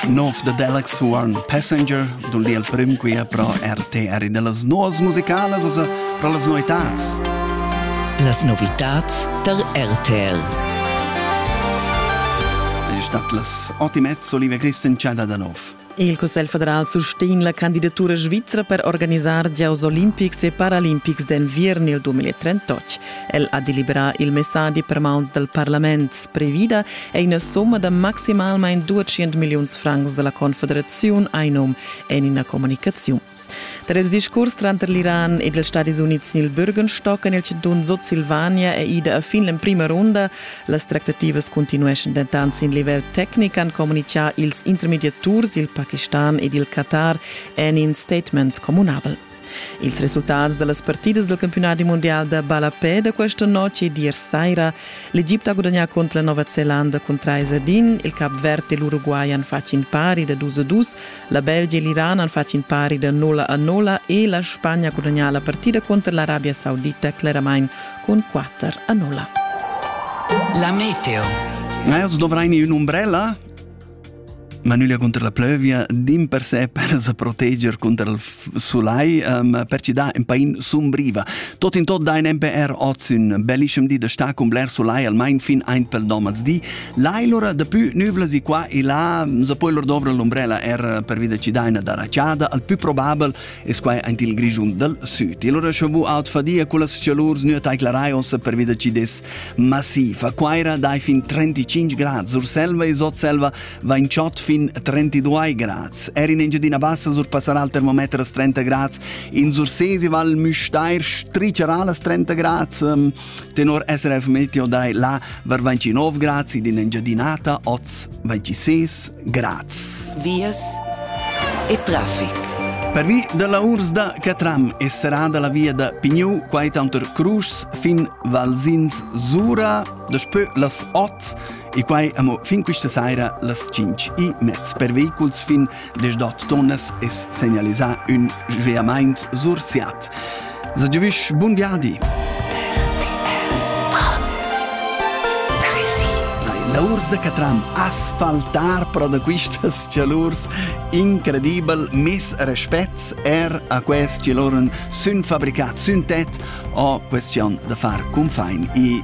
Nov da Deluxe One Passenger, dun li al prim quia pro RTR de las novas musicalas, also pro las novitats. Las novitats tar RTR. È stat las ottimezzo Olivia Christen Chada da nov. Il Cussegl federal sustegn la candidatura svizra per organisar gieus olimpics e paralimpics d'enviern il 2038. El ha deliberà il messadi per mauns dal parlament. Previda è ina somma da maximalmain 200 milliuns francs da la Confederaziun Einum en ina communicaziun. Tar ils discurs tranter l'Iran ed ils Stadis Unids sin il Bürgenstock en il chantun Sutsilvania è ida a fin l'emprima runda. Las tractativas cuntinueschan dentant sin livel tecnic, han communitgà ils intermediaturs, il Pakistan ed il Qatar en in statement communabel. Ils resultats da las partidas del campionati mondial da ballapè da questa notte e d'ieri saira. L'Egipte ha guadagnato contro la Nova Zelanda con 3 a 1, il Cap Verde e l'Uruguay hanno fatto in pari da 2 a 2, La Belgia e l'Iran han fatg in pari da nulla a nulla e la Spagna ha gudagnà la partida cunter l'Arabia Saudita cleramain cun 4 a 0. La meteo. Els dovrain ün'umbrella ma nüglia cunter la plövia dimpersè per sa proteger cunter il sulai um, per ci da in pain sumbriva. Tot in tot dein MPR oz un bellischem di da sta con bler sulai almain fin ein pel domaz di. Lailora da più nüvla si qua e là se poi lor dovra l'ombrella er per vida ci daina da racciada, al più probabel es quai ein il grigiun dal sud. E lora scho bu out fadia con las cialurs nu taiclarai os per vida ci des massiva. Quaira dai fin 35 grad, Surselva e Sotselva vain chod fin 32 grads. Er in Engiadina Bassa surpassarà il termometer a 30 grads. In Sursesi Val Müstair stricerà las 30 grads. Ehm, tenor SRF Meteo dai là var 29 grads ed in Engiadinata oz 26 grads. Vias e traffic. Per via dalla urs da Catram e serà dalla via da Pignou quai tanter Cruschs fin Valsins Sura, daspö las 8 E quai amo fin quista saira las 5 e mez per vehiculs fin les dot tonnas es segnalisà ün sveamaint sur Siat. Sa giovüsch bun viadi! La urs da Catram asfaltar pro da quistas chalurs incredibel mes respect er a quest chalurn sun fabricat sün tet o questión da far cunfain e